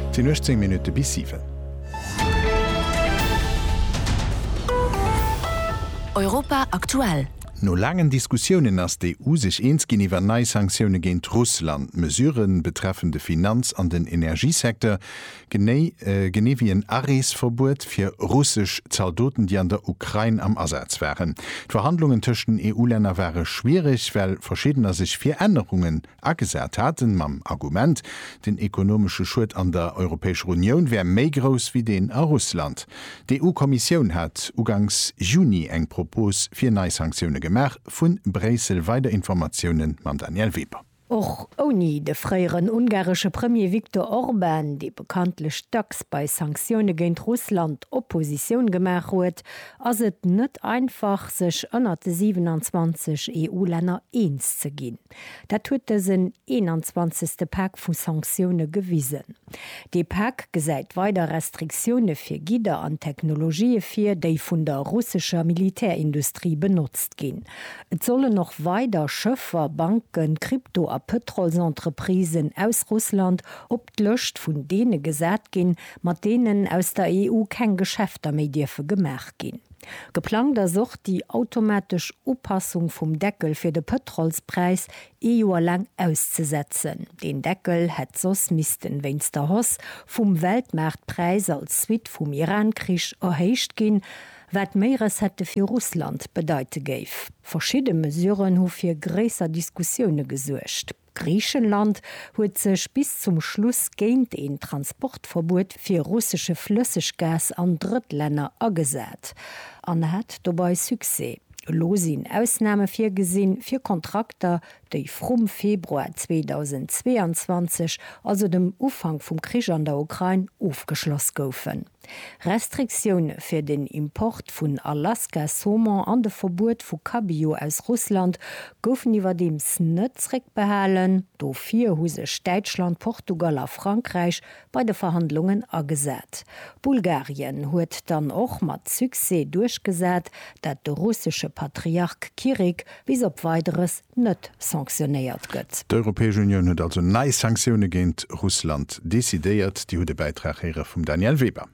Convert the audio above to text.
Et sinn 18 Minutte bis 7. Europa aktuell. No laangen Diskussiounen ass d'EU sech eens ginn iwwer nei Sanktioune géint Russland. D'Mesurë betreffen de Finanz an den Energiesecteur, genee genee wéi en Areesverbuet fir russesch Zaldoten, déi an der Ukrain am Asaz waren. D'Verhandlungen tëscht den EU-Länner ware schwiereg, well verschiddener sech fir Ännerungen agesat haten, mam Argument, den ekonomesche Schued an der Europäescher Unioun wär méi grouss wéi deen a Russland. D'EU-Kommissioun hat uganks Juni eng Propos fir nei Sanktioune gemaach. Vu Bréissel weider Informatioune mam Danièle Weber. Och ouni de fréieren ungaresche Premier Viktor Orban, dee bekanntlech dacks bei Sanktioune géint Russland Oppositioun gemaach huet, ass et net einfach, sech ënnert de 27 EU-Länner eens ze ginn. Dat huet dësen 21. Pak vu Sanktioune gewisen. Dee Pak gesäit weider Restriktioune fir Gidder an Technologië vir, déi vun der russescher Militärindustrie benotzt ginn. Et sollen och weider Schëffer, Banken, Krypto a Pëtrolsentreprisen aus Russland op d'Lëscht vun deene gesat ginn, mat deenen aus der EU keng Geschäfter méi dierfe gemaach ginn. Geplangt ass och déi automatesch Upassung vum Deckel fir de Pëtrolspräis ee Joer laang auszesetzen. Deen Deckel hätt soss missten wéinst der Hausse vum Weltmaartpräis als Suite vum Iran-Krich erhéicht ginn, wat méi Recettë fir Russland bedeite géif. Verschidde Mesuren hu fir gréisser Diskussioune gesuergt. Griichenland huet sech bis zum Schluss géint een Transportverbuet fir russesche Flësseggas an Drëttlänner agesat an hat dobei Succès. Elo sinn Ausname virgesinn fir Kontrakter, déi vrum Februar 2022, also dem Ufank vum Krich an der Ukrain, ofgeschloss goufen. Restriktioune fir den Import vun Alaska-Saumon an de Verbuet vu Cabillaud aus Russland goufen iwwerdeems net zréckbehalen. Dofir hu sech Däitschland, Portugal a Frankräich bei de Verhandlungen agesat. Bulgarien huet dann och mat Succès duerchgesat, dat de russesche Patriark Kirik bis op Weideres net sanktionéiert gëtt. D'Europäesch Unioun huet also nei Sanktioune géint Russland decidéiert. Dir hutt e Bäitrag héiere vum Danièle Weber.